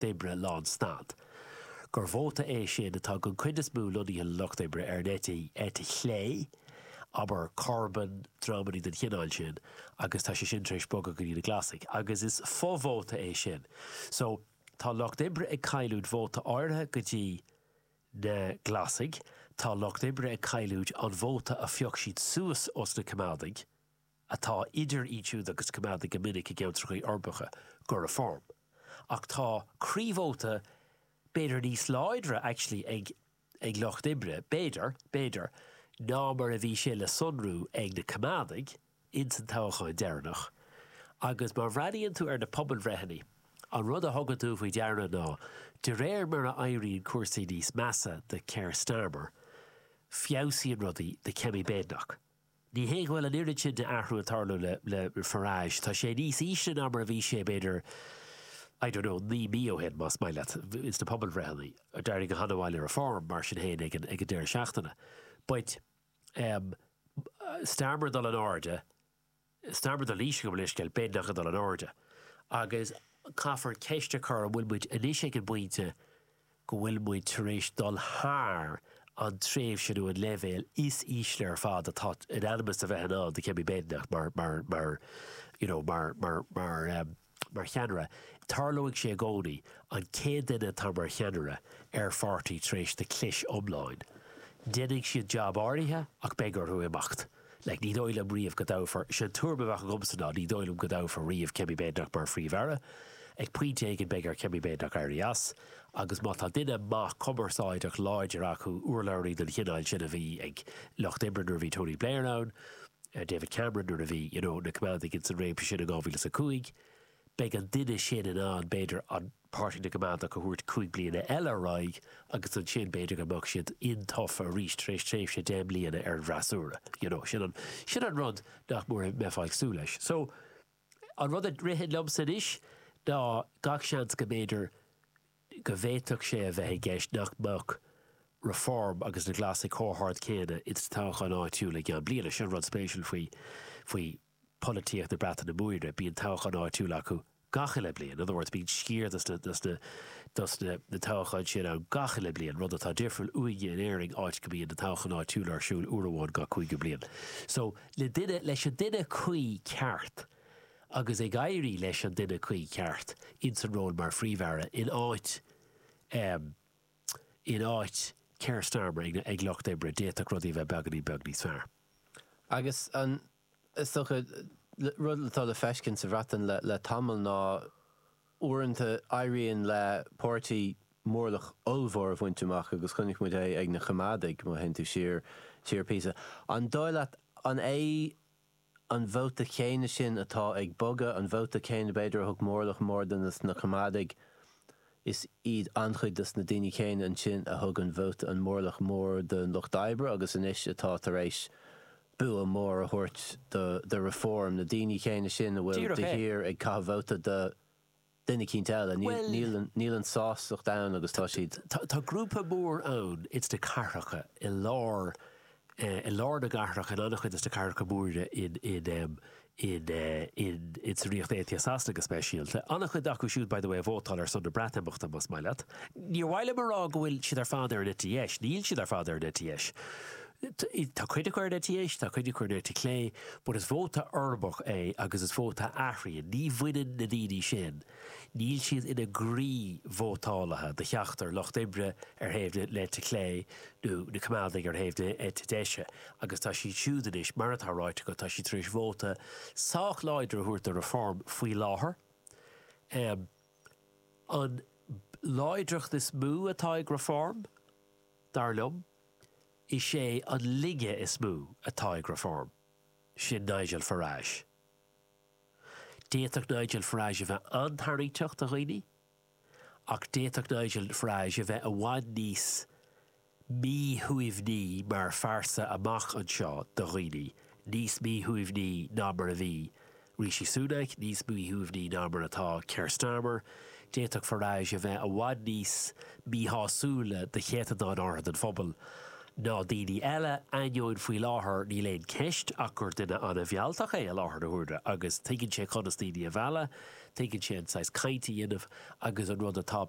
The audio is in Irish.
d'oibre lán snad. Gur vóta é sin atá den chuid is mó lonnaithe le Lucht Oibre ar an eite eite chlé, abair, Corbyn, dreamanna den chineál sin, agus tá sé sin tar éis bogadh go dtí na Glasaigh. Agus is fo-vóta é sin. So, tá Lucht Oibre ag cailliúint vóta áirithe go dtí na Glasaigh, tá Lucht Oibre ag cailliúint an vóta a phioc siad suas os na Coimeádaigh, atá ag dul anonn chuig na Coimeádaigh go minic i gceantracha uirbeacha, go Reform. Ach tá croívóta b'fhéidir níos láidre actually ag ag Lucht Oibre, b'fhéidir, b'fhéidir, ná mar a bhí sé le sonrú ag na Coimeádaigh ins an toghchán deireanach. Agus má bhreathnaíonn tú ar na pobalbhreitheannaí, an rud a thugann tú faoi deara ná, de réir mar a éiríonn cúrsaí níos measa do Keir Starmer, feabhsaíonn rudaí do Kemi Badenoch. Ní hé go bhfuil an oiread sin d'athrú ag tarlú le le Farage. Tá sé níos ísle ná mar a bhí sé b'fhéidir, I don't know, naoi mí ó shin, más maith leat. ins na pobalbhreitheanna. D'éirigh go han-mhaith le Reform, mar sin féin, ag an ag an deireadh seachtaine. But ehm Starmer ag dul in airde, Starmer ag dul síos, gabh mo leithscéal, Badenoch ag dul in airde. Agus caithfear ceist a chur an bhfuil muid anois ag an bpointe go bhfuil muid tar éis dul thar an tréimhse nó an leibhéal is ísle ar fad atá in ainm is a bheith i ndán do Kemi Badenoch mar, mar, mar, you know, mar, mar, mar, mar cheannaire. Tarlóidh sé i gcónaí, an chéad duine atá mar cheannaire ar pháirtí tar éis dó cliseadh go hiomlán, déanfaidh siad jab áirithe ach beidh orthu imeacht. Like, ní dóigh liom riamh go dtoghfar, sin an tuairim a bheadh agamsa ná, ní dóigh liom go dtoghfar riamh Kemi Badenoch mar Phríomh-Aire. Ag pointe éigin beidh ar Kemi Badenoch éirí as, agus má tá duine maith cumarsáideach láidir acu, urlabhraí den chineál sin a bhí ag Lucht Oibre nuair a bhí Tony Blair ann, David Cameron nuair a bhí, you know, na Coimeádaigh ins an réimse sin in 2005, beidh an duine sin in ann, b'fhéidir, an. páirtí na gCoimeádach a thabhairt cúig bliana eile ar aghaidh agus ansin b'fhéidir go mbeadh siad intofa arís tar éis tréimhse deich mbliana ar an bhfreasúra you know sin an sin an rud nach mór a mbeifeá ag súil leis so an rud a ritheann liomsa anois ná gach seans go mb'fhéidir go bhféadfadh sé a bheith i gceist nach mbeadh Reform agus na Glasaigh chomh hard céanna ins na toghcháin áitiúla i gceann bliana. sin an rud spéisiúil faoi faoi polaitíocht na Breataine Móire, bíonn toghcháin áitiúla acu gach uile bliain. In other words, bíonn sciar dos na, dos na, dos na, na toghcháin sin ann gach uile bliain, rud atá difriúil uainne in Éirinn áit go mbíonn na toghcháin áitiúla ar siúl uair amháin gach cúigiú bliain. So, le duine, leis an duine cuí ceart agus ag éirí leis an duine cuí ceart ins an ról mar Phríomh-Aire in áit ehm, in áit Keir Starmer ag na, ag Lucht Oibre, d'fhéadfadh rudaí a bheith beagainín beag níos fearr. Agus an. Is dócha, rud atá le feiscint sa Bhreatain le tamall ná uaireanta éiríonn le páirtí mórlach ollmhór a bhaint amach agus chonaic muid é ag na Coimeádaigh, má théann tú siar, siar píosa. An dóigh leat, an é an vóta céanna sin atá ag bogadh, an vóta céanna b'fhéidir a thug mórlach mór dos na Coimeádaigh, is iad an-chuid dos na daoine céanna ansin a thug an vóta, an mórlach mór don lucht oibre agus anois atá tar éis bua mór a thabhairt do Reform, na daoine céanna sin a bhfuil de shíor ag caitheamh vóta do dhuine eicínt eile. Níl aon sástacht ann agus tá siad. Tá grúpa mór ann ins na cathracha, i lár, i lár na gcathracha, in an-chuid des na cathracha móra in. in, in, insan Ríocht Aontaithe Sasana go speisialta. An-chuid acu siúd, by the way, a vótáil ar son na Breatimeachta, más maith leat. Níor mhaith liom a rá go bhfuil siad ar fad ar an eite dheis. Níl siad ar fad ar an eite dheis. Tá cuid acu ar an eite dheis, tá cuid acu ar an eite chlé, but is vóta uirbeach é agus is vóta a athraíonn. Ní bhaineann na daoine sin, Níl siad ina gcroí vótálaithe do cheachtar lucht oibre ar thaobh na heite clé nó na Coimeádaigh ar thaobh na heite deise agus tá siad siúd anois, mar atá ráite agat, tá siad tar éis vóta sách láidir a thabhairt do Reform faoi láthair. An láidreacht is mó atá ag Reform, dar liom, is é an laige is mó atá ag Reform, sin Nigel Farage. D'fhéadfadh Nigel Farage a bheith an-tarraingteach do dhaoine, ach d'fhéadfadh Nigel Farage a bheith i bhfad níos míthaitneamhaí mar phearsa amach anseo do dhaoine, níos míthaitneamhaí ná mar a bhí Rishi Sunak, níos míthaitneamhaí ná mar atá Keir Starmer. D'fhéadfadh Farage a bheith i bhfad níos míshásúla do chéatadán áirithe den phobal ná daoine eile, ainneoin faoi láthair níl aon ceist ach gur duine an-mhealltach é i láthair na huaire agus tuigeann sé conas daoine a mhealladh, tuigeann sé an saghas cainte a dhéanamh agus an rud atá.